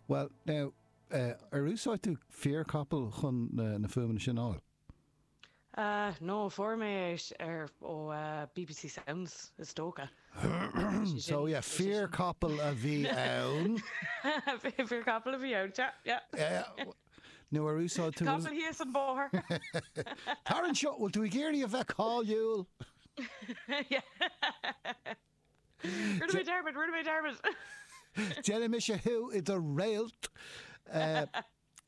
Bhuel, now, ar úsáid tú fíor capall chun na fuaimeanna sin a fháil? Ah, no, fuair mé é ar, ó, bbc Sounds, is dócha. So, yeah, fíor capall a bhí ann. Fíor capall a bhí ann, yeah, yeah. Nó ar úsáid tú. Capall thíos an bóthar. Tar anseo, bhfuil tú ag iarraidh a bheith cáiliúil? Yeah. Rinne mé dearmad, rinne mé dearmad! Déanfaidh mise thú i do réalt! Eh,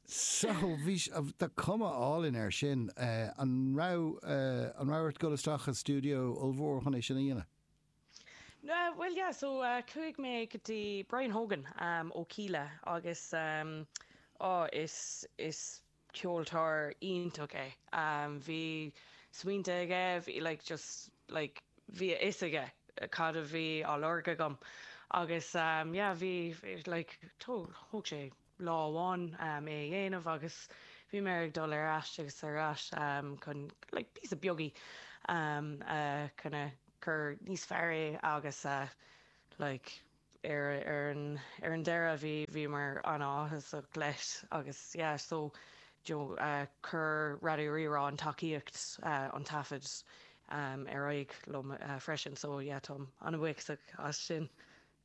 so, bhí, tá cuma álainn ar sin. Eh, an raibh, eh, an raibh ort dul isteach i studio ollmhór chun é sin a dhéanamh? No, well, yeah, so uh, chuaigh mé go dtí Brian Hogan um, ó Kíla agus um, oh, is, is ceoltóir iontach é. Bhí smaointe aige, bhí like just like bhí a fhios aige cad a bhí á lorg agam agus yeah bhí like thóg sé lá amháin é a dhéanamh agus bhí mé ag dul ar ais agus ar ais chun like píosaí beaga a kind of cur níos fearr é agus like ar an deireadh, bhí, bhíomar an-áthasach leis agus yeah, so you know chuir Raidió Rí-Rá an tacaíocht, an taifead ar aghaidh liom freisin so yeah, táim an-bhuíochasach as sin.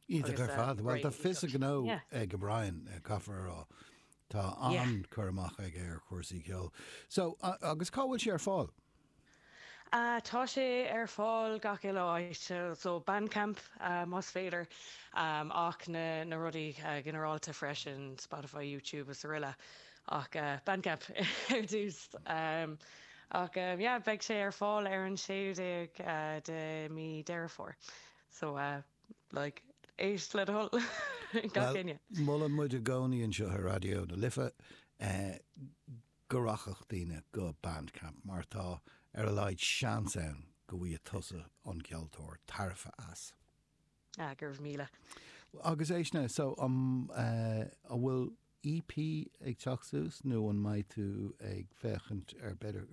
Iontach ar fad, bhuel tá a fhios a ghnó ag Brian, caithfear a rá, tá an-chur amach aige ar chúrsaí ceoil. So, agus cá bhfuil sé ar fáil? Tá sé ar fáil gach uile áit, so Bandcamp más féidir ach na rudaí ginearálta freisin, Spotify, YouTube is araile ach Bandcamp ar dtús. Ach yeah, beidh sé ar fáil ar an 16ú de mí Deireadh Fómhair, so like éist le do thoil gach éinne. Bhuel, molann muid i gcónaí anseo ar Raidió na Life go rachadh daoine go Bandcamp mar tá ar a laghad seans ann go bhfaighidh tusa an ceoltóir tairbhe as. Ah, go raibh míle. Agus é sin, so an bhfuil EP ag teacht suas nó an mbeidh tú ag féachaint ar b'fhéidir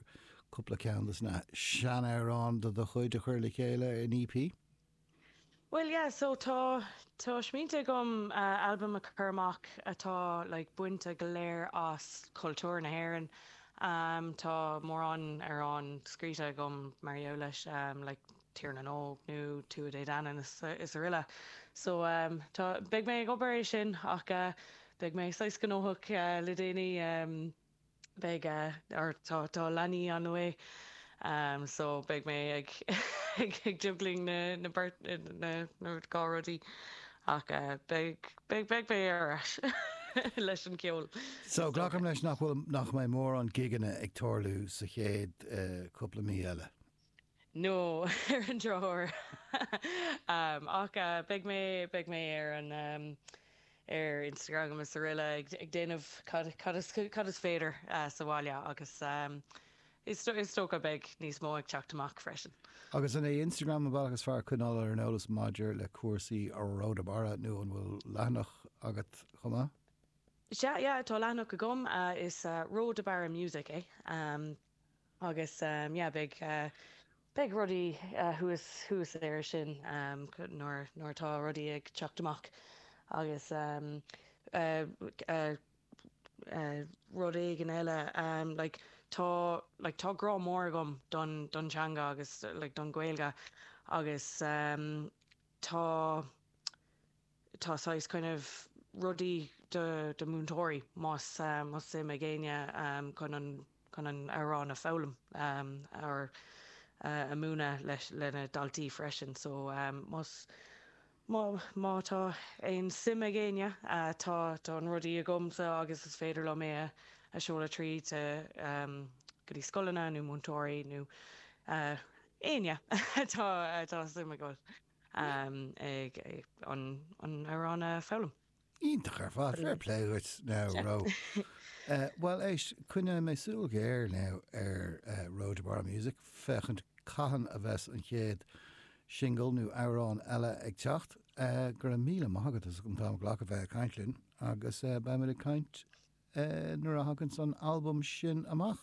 cúpla ceann de na sean-amhráin de do chuid a chur le chéile in EP? Bhuel, yeah, so tá, tá smaointe agam albam a chur amach atá like bainte go léir as cultúr na hÉireann. Tá mórán amhrán scríte agam mar gheall leis, like Tír na nÓg nó Tuatha Dé Danann is araile. So, tá, beidh mé ag obair é sin ach beidh mé saghas gnóthach le déanaí. beidh, ó tá, tá leanaí on the way, so beidh mé ag, ag, ag juggling na, na beirt, na, na dá rudaí, ach beidh, beidh, beidh mé ar ais leis an gceol. So glacaim leis nach bhfuil, nach mbeidh mórán gigeanna ag tarlú sa chéad cúpla mí eile. no ar an drochuair. Ach beidh mé, beidh mé ar an, ar Instagram agus araile ag déanamh cad, cad is, cad is féidir sa bhaile agus is, is dócha beidh níos mó ag teacht amach freisin. Agus an é Instagram an bealach is fearr coinneáil ar an eolas maidir le cúrsaí Ró de Barra nó an bhfuil leathanach agat chomh maith? Sea, yeah, tá leathanach agam, is Ró de Barra Music é. Agus, yeah, beidh, beidh rudaí thuas, thuas air sin nuair, nuair atá rudaí ag teacht amach agus rudaí eile, like, tá, like, tá grá mór agam don, don teanga agus, like, don Ghaeilge agus tá, tá saghas kind of rudaí do do mhúinteoirí más más suim ag éinne chun an chun an amhrán a foghlaim or a múineadh leis le na daltaí freisin so más má má tá aon suim ag éinne tá tá an rudaí agamsa agus is féidir liom é a seoladh tríd go dtí scoileanna nó múinteoirí nó éinne atá atá suim acu. ag an amhrán a foghlaim. Iontach ar fad, fair play dhuit now Ró. Bhuel éist, coinneoidh mé súil ghéar now ar Ró de Barra Music féachaint cathain a bheas an chéad singil nó amhrán eile ag teacht. Go raibh míle maith agat as an t-am a ghlacadh a bheith ag caint linn agus beimid ag caint nuair a thagann an t-albam sin amach.